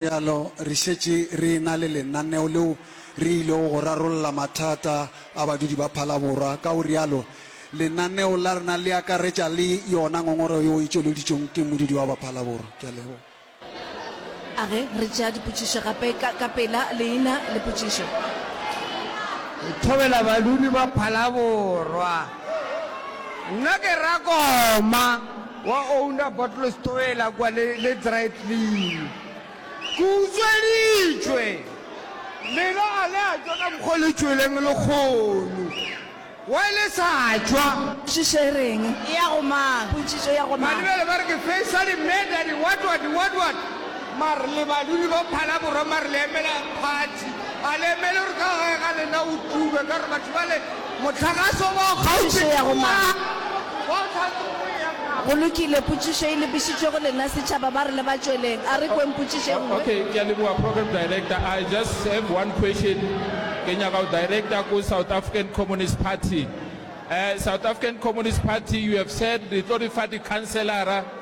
bjalo, re šetše re e-na le lenaneo leo re ilego go rarolla mathata a badudi ba Phalaborwa. Ka go rialo, lenaneo la rena le akaretša le yona ngongorego yeo e tšweleditšwego ke modudi wa ba Phalaborwa. Ke a leboga. A ge re tšea dipotšišo gape, ka, ka pela leina le potšišo. Go thobela badudi ba Phalaborwa. Nna ke Rakoma wa Owner Bottles Towela kua le le Dry Clean. Ke utsweditšwe. Lena a le a tšwa ka mokgwa o le tšweleng lekgono. Why le sa tšwa? Potšišo e reng? E ya go mang? Potšišo e ya go mang? Malebele ba re ke Faisal Meda, di what what, di what what. Mare le badudi ba Phalaborwa mare le emela party. A le emele gore ka gae ga lena o tube ka gore batho bale Mohlagaso wa Potšišo ya go Mangwa. Go lokile, potšišo e lebišitšwe go lena setšhaba. Ba re le ba tšweleng. A re kweng potšišo e nngwe. Okay, ke a leboga Program Director. I just have one question. Ke nyaka go director ko South African Communist Party. Eh, South African Communist Party, you have said le tlo re fa di-councillor-a.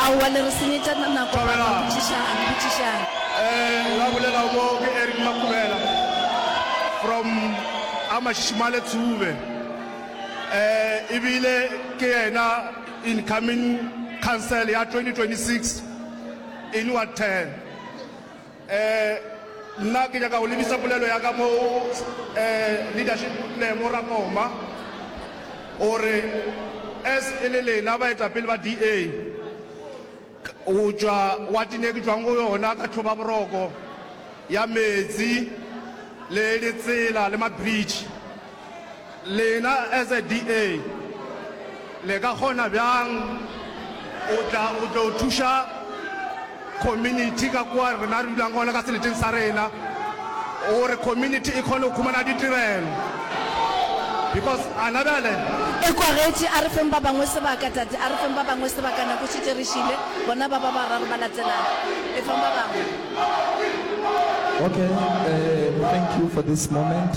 Aowa le re senyetša nako ba re botšišang, botšišang. Eh, la bolelago mo ke Eric Makubela from Amashishimale Tsube. Eh, e bile ke yena incoming council ya 2026 in Ward 10. Ee, nna ke nyaka go lebisa polelo ya ka mo go leadership Lemo Rakoma gore as e le lena baetapele ba DA go tšwa watine e ke tšwang go yona ka tlhoba boroko ya meetse le ditsela le ma-bridge. Lena as a DA le ka kgona bjang o tla o tlo thuša community ka kwa rena re dulang gona ka seleteng sa rena gore community e kgone go khumana ditirelo because a na bjale Ekwagetše, a re feng ba bangwe sebaka, tate, a re feng ba bangwe sebaka, nako e šetše e re šile, bona ba ba bararo ba latelana. Efang ba bangwe. Okay, uh, thank you for this moment.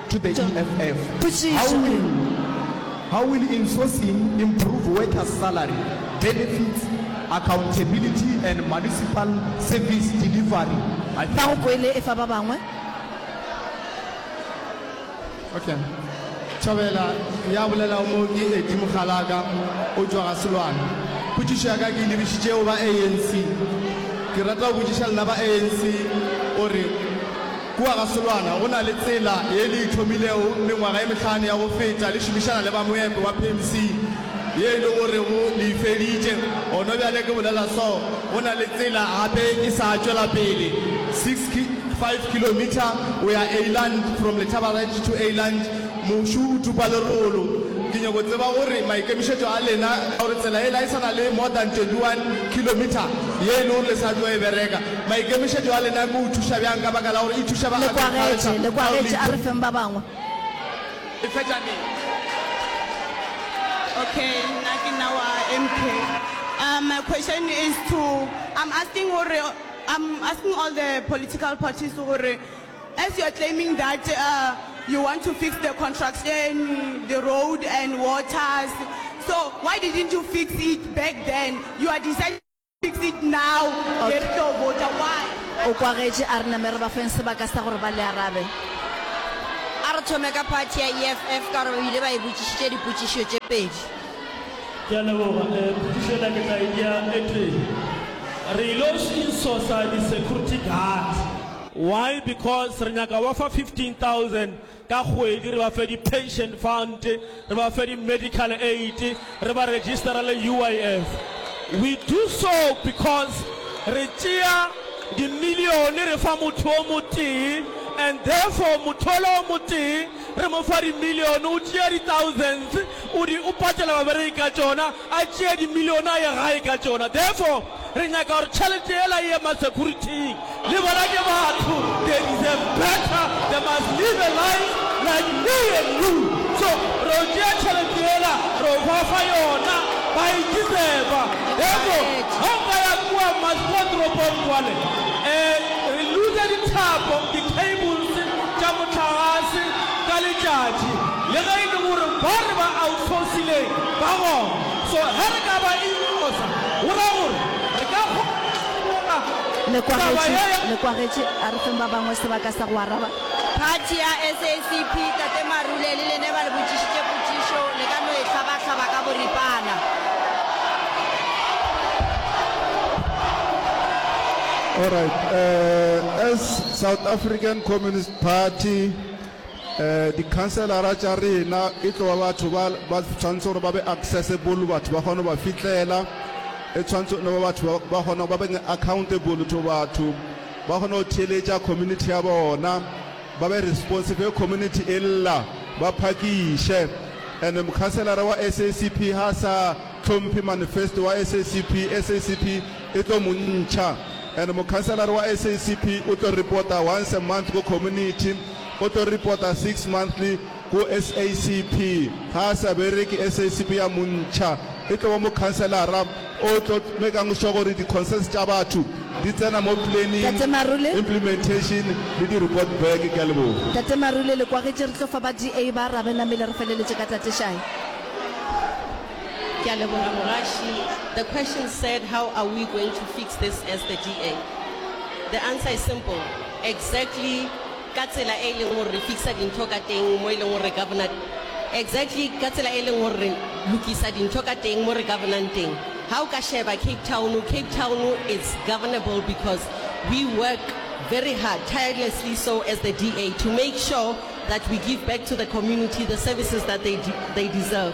to the EFF. How will, how will insourcing improve workers salary, benefits, accountability and municipal service delivery? I think. Nago kwele e fa ba bangwe. Okay. Thabela ya bolela mo ke Eddie Mogalaka o tšwa ga Selwane. Potšišo ya ka ke lebišitše go ba ANC. Ke rata go botšiša lena ba ANC gore Kua gasolwana go na le tsela ye le e thomilego mengwaga e mehlano ya go feta le šomišana le ba moepo ba PMC ye e le gorego le e feditše. Gono bjale ke bolela so, go na le tsela gape e sa tšwela pele, six ki, five kilometre go ya Eyland, from Letaba Ranch to Eyland. Mošu o tupa lerolo. Ke nyoko tseba gore maikemišetšo a lena ka gore tsela yela e sa na le more than twenty one kilometre ye e le gore le sa tlo e bereka. Maikemišetšo a lena ke o thuša bjang ka baka la gore e thuša ba agriculture le kwa getše a re feng ba bangwe. E fetša neng? Okay, nna ke nna wa MK. Um, my question is to, I'm asking gore, I'm asking all the political parties gore, as you are claiming that uh, you want to fix the construction, the road and waters, so why didn't you fix it back then? You are deciding O kwagetše a re name re ba feng sebaka sa gore ba le arabe. A re thome ka phathi ya EFF ka gore ba bile ba e botšišitše dipotšišo tše pedi. Ke a leboga. Potšišo yela ke tla e bea e tee. Re yilo šinsosa di-security guard. Why? Because re nyaka go ba fa 15,000 Ka kgwedi re ba fe di-pension fund, re ba fe di-medical aid, re ba registerele UIF. We do so because re tšea dimilione re fa motho o motee and therefore motho ola o motee re mo fa dimilione o tšea di-thousands o di o patela babereki ka tšona, a tšee dimilione a ye gae ka tšona. Therefore. Re nyaka gore tšhelete yela e ye masecurity-ing. Le bona ke batho, they deserve better, they must live a life like me and you. So re yo tšea tšhelete yela re yo ba fa yona, ba e deserva. Therefore ga o ka ya kua Maspotropong kwale, um re loose dithapo, di-cables tša mohlagase ka letšatši, le ge e le gore ba re ba outsourcileng ba gona. So ge re ka ba inyogosa, go raya gore re ka kgona go ineela taba ye ya. Le kwagetše, a re feng ba bangwe sebaka sa go araba. Phathi ya SACP, Tate Marule, le lene ba le botšišitše potšišo, le ka no e hlaba-hlaba ka boripana. Alright, as South African Communist Party, Dikhanselara tša rena e tlo ba batho ba ba tshwanetse gore ba be accessible, batho ba kgone go ba fitlela. E tshwanetse no ba batho ba ba kgona ba beng accountable to batho, ba kgone go theeletša community ya bona, ba be responsive ge community e lla, ba phakiše. And mokhanselara wa SACP ha a sa hlomphe manifesto wa SACP, SACP e tlo mo ntšha. And mokhanselara wa SACP o tlo reporta once a month ko community, Photo Reporter Six Monthly Ku SACP ga a sa bereke SACP ya montšha e tlo ba mokhanselara o tlo make'ng sure gore di concerns tša batho di tsena mo planning, Tate Marule. implementation le di report back. Ke a leboga. Tate Marule le kwagetše re tlo fa ba DA ba arabe namile re feleletše ka Tate Shayi. Ke a leboga mogaši. The question said how are we going to fix this as the DA? The answer is simple, exactly ka tsela e leng gore re fixer dintho ka teng mo e leng gore re governor exactly ka tsela e leng gore re lokisa dintho ka teng mo re governang teng ha o ka sheba Cape Town Cape Town is governable because we work very hard tirelessly so as the DA to make sure that we give back to the community the services that they, de they deserve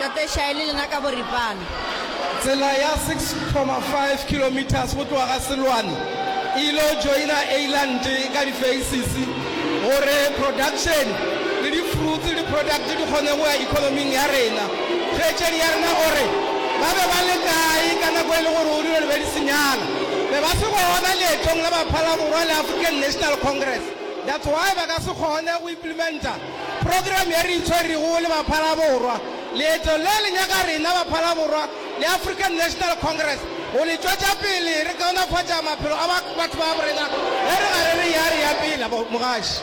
Tate Shae le lena ka boripana. Tsela ya 6,5 kilometres go tloga ga Seloane e il'o joina Eyland ka di-faces gore production le di-fruits le di-products di kgone go ya economy-ing ya rena. Kgaetšedi ya rena o re, Ba be ba le kae ka nako e le gore o dilo di be di senyala? Be ba se gona leetong la Baphalaborwa le African National Congress. That's why ba ka se kgone go implementer. Program ye re e tswerego le Baphalaborwa, leeto le le nyaka rena Baphalaborwa le African National Congress go le tšwetša pele re kaonafatša maphelo a batho babo rena ge re gare re eya re ya pele. Mogaši.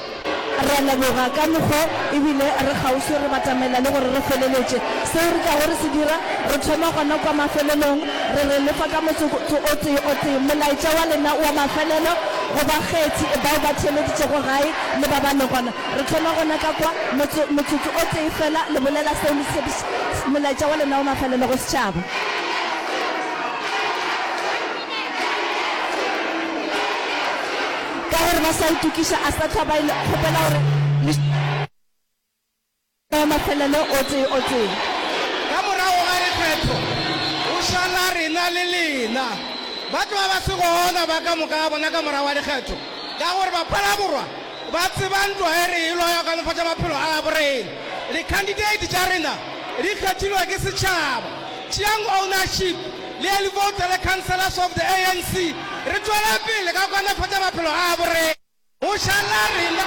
Re a leboga ka mokgwa e bile re kgauswi re batamela le gore re feleletše seo re tlago re se dira. Re thoma gona kwa mafelelong, re re lefa ka motsotso o tee o tee. Molaetša wa lena wa mafelelo go bakgethi bao ba theeleditšego gae le ba ba le gona. Re thoma gona ka kwa, motso, motsotso o tee fela, le bolela seo le tshepiš-, Molaetša wa lena o mafelelo go setšhaba. Ka gore ba sa itokiša, a sa hlwa ba e le, kgopela gore le. Ee, mafelelo o tee o tee. Ka morago ga diphetho, go šala rena le lena. Batho ba ba se gona ba ka moka ga bona ka morago ga dikgetho, ka gore Baphalaborwa ba tseba ntwa e re e lwa ya go kanofatša maphelo a gabo rena. Dikhandideiti tša rena di kgethilwe ke setšhaba. Tšeang ownership le early voter le councillors of the ANC. Re tšwele pele ka go kanofatša maphelo a gabo rena. O šala rena.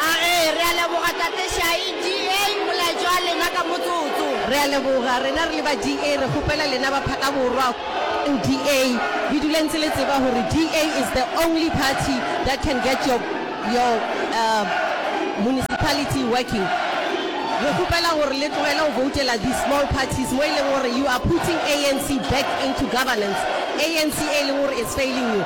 A re, Re a leboga, Tate Shayi. DA, molaetša wa lena ka motsotso. Re a leboga. Rena re le ba DA re kgopela lena ba Phakaborwa go DA. Le dule ntse le tseba gore DA is the only party that can get your, your, uh, municipality working. Re kgopela gore le tlogele go voutela these small parties mo e leng gore you are putting ANC back into governance. ANC e leng gore is failing you.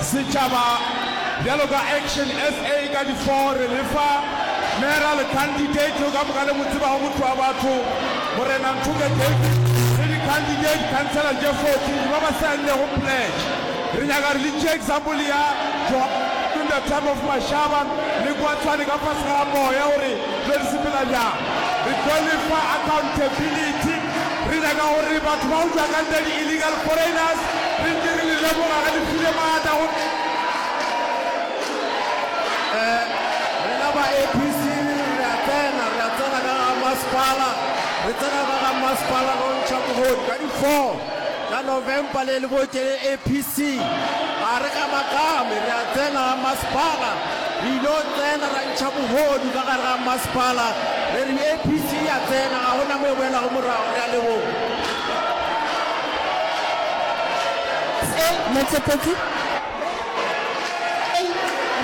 Setšhaba bjalo ka Action SA ka di four re le fa Mayoral Candidate o ka moka le mo tsebago motho wa batho Morena Nthoke David le di Candidate Councillor tše 14 ba ba saennlego pledge re nyaka re le tšee example ya Johann the time of Mashaba le kwa Tshwane ka fase ga moya gore tlo re sepela bjang re tlo le fa accountability re nyaka gore batho ba go tšwa ka ntle di illegal foreigners Nnete re le leboga ge le file maatla go rena ba APC. Re a tsena, re a tsena ka ga masepala, re tsena ka ga masepala go ntšha bogodu ka di 4 tša November. Le le botše le APC ga re gamakgame, re a tsena ga masepala, re ilo tsena ra ntšha bogodu ka gare ga masepala. Re re APC ya tsena, ga go na mo e boelago morago. Re a leboga. Se, Metsepetsi. Re,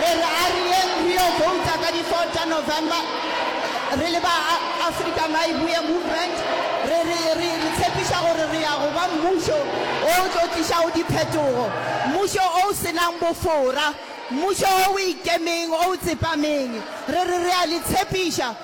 re re a re yeng re yo vouta ka di 4 tša November, re le ba Afrika Maibuye Movement, re, re, re, re tshepiša gore re ya go ba mmušo o o tlo tlišago diphetogo, mmušo o o se nang bofora, mmušo o o ikemeng, o o tsepameng. Re re re a le tshepiša.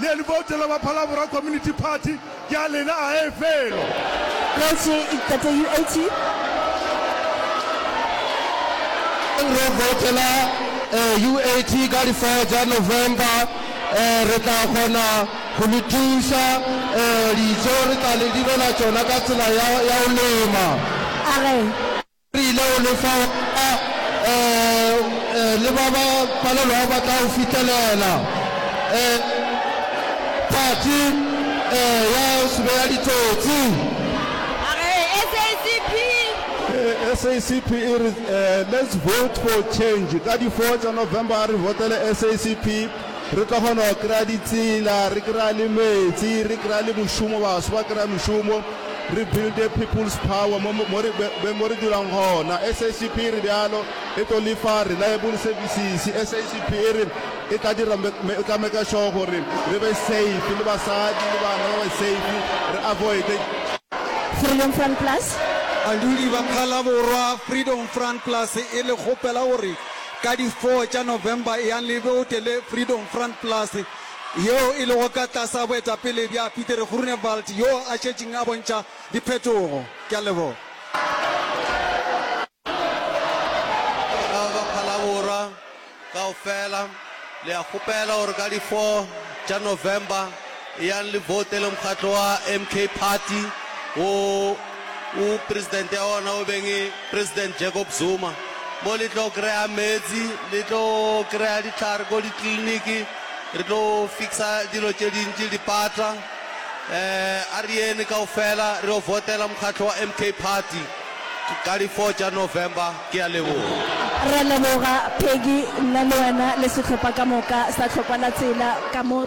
Le libouto la ba Phalabora Community Party ke a lena ae felo. Kgoši Ntate UAT e reng re voutela UAT ka di four tša November re tla kgona go le thuša, dijo re tla le direla tšona ka tsela ya go lema. A re. Rile o lefa wona, ee, le ba ba palelwago ba tla o fihlelela. Ee, phatsi, ee, ya sube ya ditsotsi. SACP e re, eh, let's vote for change ka di four tša November a re votele SACP. Re tla kgona go kry-a ditsela, re kry-a le metsi, re kry-a le mošomo, baso ba kry-a mošomo, re build-e people's power mo, mo, mo, mo re dulang gona. SACP e re bjalo, e tlo lefa reliable services. SACP e re e tla dira, e tla maker sure gore re be safe, le basadi le bana ba be safe, re avoide. Freedom Front Plus. Badudi ba Phalaborwa, Freedom Front Plus e le kgopela gore Ka di 4 tša November eang le boute le Freedom Front Plus yeo e lego ka tlasa boetapele bja Pieter Groenewald yoo a šetšeng a bontšha diphetogo. Ke a leboga. Ka ba Phalaborwa kaofela le a kgopela gore ka di 4 tša November Eyang le voutele mokgatlo wa MK Party wo o presidente ya ona o beng e President Jacob Zuma. Mo le tlo kry-a meetsi, le tlo kry-a ditlhare ko ditleliniki, re tlo fixa dilo tše dintši, dipata. Eh, a re yene kaofela re yo voutela mokgatlo wa MK Party ka di four tša November. Ke a leboga. Re a leboga Peggy, nna le wena le sehlopha ka moka sa Tlhokwa la Tsela ka mo.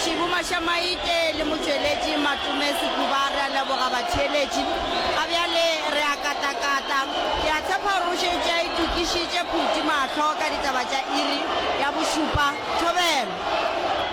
Shibu Mashamaite le motšweletši Matume Sekuba re a leboga batheeletši. Ga bjale re a katakata. Ke a tshepa gore o šetše a itokišitše phuti mahlo ka ditaba tša iri ya bošupa. Thobela.